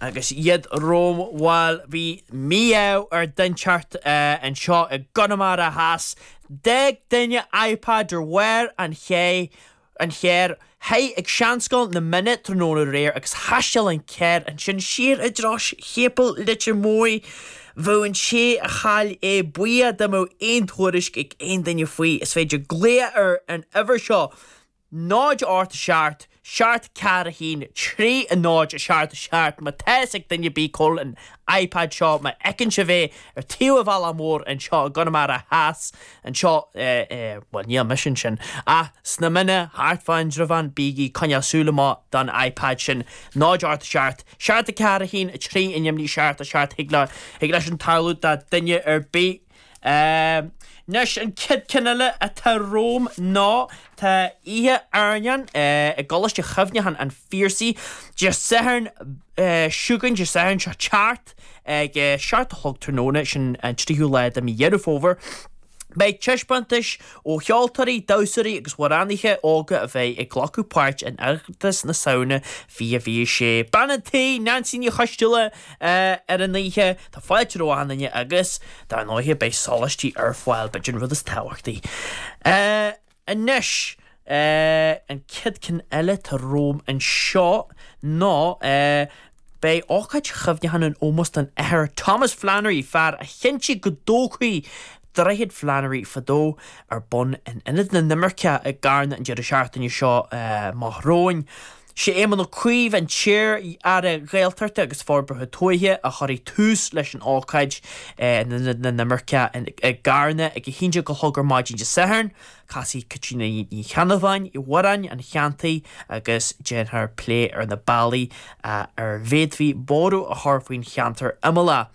Agus iad rómhall bhí mí-ádh ar dhuine inteacht anseo i gConamara Theas. D'fhág duine iPad ar bharr an chairr, shuigh ag seanscoil na Minna tráthnóna aréir agus thaisteal an carr ansin siar i dtreo Séipéal Leitir Móir. Bheadh an té a chaill é buíoch dá mbeadh aon tuairisc ag aon duine faoi. Is féidir glaoch ar an uimhir seo. 0 ocht seacht seacht ceathair a haon trí a náid seacht seacht má tá fhios ag duine ar bith cá bhfuil an ipad seo má fheiceann sibh é ar thaobh an bhealaigh mhóir anseo i gConamara theas anseo i bhuel níl mise ansin ach sna Minna thart fá Indreabhán bígí ag coinneáil súil amach don ipad sin 0 ocht seacht seacht a ceathair a haon a trí neamhní seacht a seacht thig leis sin tarlú do duine ar bith Anois an chéad cheann eile atá romham ná tá oíche airneáin i gColáiste Chuimhneacháin an Phiarsaigh Dé Sathairn seo chugainn, Dé Sathairn seo ag teacht, ag a seacht a chlog tráthnóna, sin an tríú lá de mí Dheireadh Fómhair. Beidh taispeántais ó cheoltóirí, damhsóirí agus amhránaithe óga a bheidh ag glacadh páirt in Oireachtas na Samhna 2026. Bean an tí, Neansaí Ní Choisdealbha. ar an oíche. Tá fáilte roimh achan nduine agus dar ndóighe beidh soláistí ar fáil b'fhéidir an rud is tábhachtaí. Anois an chéad cheann eile atá romham anseo ná beidh ócáid chuimhneacháin in ómós don Athair Thomas Flannery, fear a chinntigh go dtógfaí Droichead Flannery fadó, ar bun in Ionad na nImirceach i gCarna an deireadh seachtaine seo amach romhainn. Sé Éamon Ó Cuív, an t-iar-aire Gaeltachta agus Forbartha Tuaithe, a chuirfidh tús leis an ócáid in Ionad na nImirceach i gCarna ag 11:00 ar maidin Dé Sathairn. Casfaidh Caitríona Ní Cheannabháin amhráin an cheantair agus déanfar plé ar na bealaí a bhféadfaí borradh a chur faoin cheantar imeallach.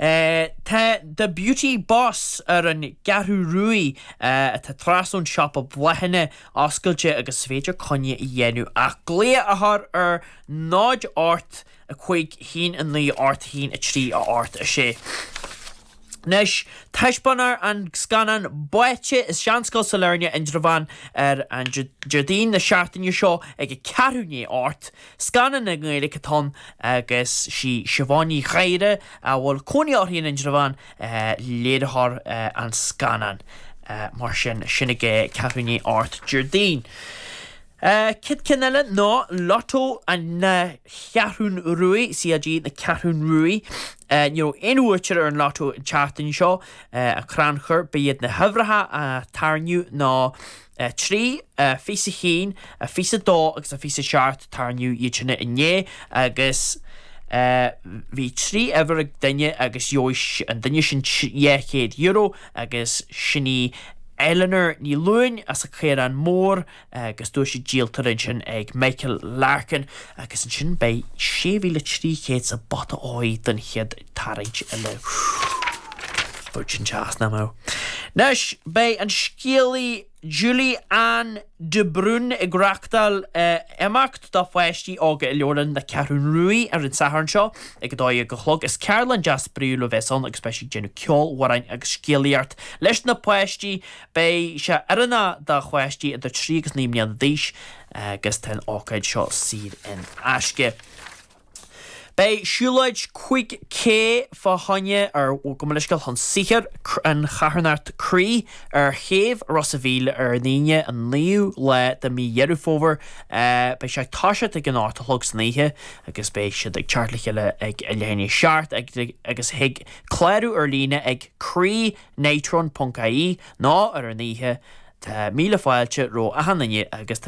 Tá The Beauty Boss ar an gCeathrú Ruaidh, atá trasna ón siopa bláthanna, oscailte agus is féidir coinne a dhéanamh ach glao a chur ar 0 8 5 1 9 8 1 3 a 8 6. Anois taispeánfar an scannán Báite i Seanscoil Sailearna, Indreabhán, ar an Déardaoin na seachtaine seo ag ceathrú i ndiaidh a hocht. Scannán i nGaeilge atá ann agus sí Siobhán Ní Ghadhra, a bhfuil cónaí uirthi in Indreabhán, léiritheoir an scannáin. Mar sin, sin ag ceathrú i ndiaidh a hocht Déardaoin. Chéad cheann eile ná Lotto na Ceathrún Ruaidh, CLG na Ceathrún Ruaidh. Ní raibh aon bhuaiteoir ar an Lotto an tseachtain seo, an crannchur. Ba iad na huimhreacha a tarraingíodh ná. 3, a 21, a 22 agus a 27, tarraingíodh iad sin inné agus bhí trí uimhir ag duine agus gheobhaidh an duine sin €200 agus sin í Eleanor Ní Luain as an Caorán Mór agus duais an díoltóra ansin ag Michael Larkin agus ansin beidh 6,300 sa bpota óir don chéad tarraingt eile. Dúirt an teas nam amh. Anois beidh an scéalaí Julie Anne de Brún ag reachtáil imeacht do pháistí óga i Leabharlann na Ceathrún Ruaidh ar an Satharn seo ag 12 a chlog. Is ceardlann deas spraíúil a bheas ann agus beidh sí ag déanamh ceoil, amhráin agus scéalaíocht leis na páistí. Beidh sé oiriúnach do pháistí idir trí agus naoi mbliana d'aois agus tá an ócáid seo saor in aisce. Beidh siúlóid 5K fá choinne ar Mhuinscil chun sochair an charthanacht Croí ar chéibh Ros a Mhíl ar an Aoine an 9ú lá de Mí Dheireadh Fómhair. Beidh sé ag toiseacht ag an 8 a chlog san oíche agus beidh siad ag teacht le chéile ag leath i ndiaidh a 7 agus thig clárú ar líne ag Croí Night Run ponc ie nó ar an oíche Tá míle fáilte roimh achan duine agus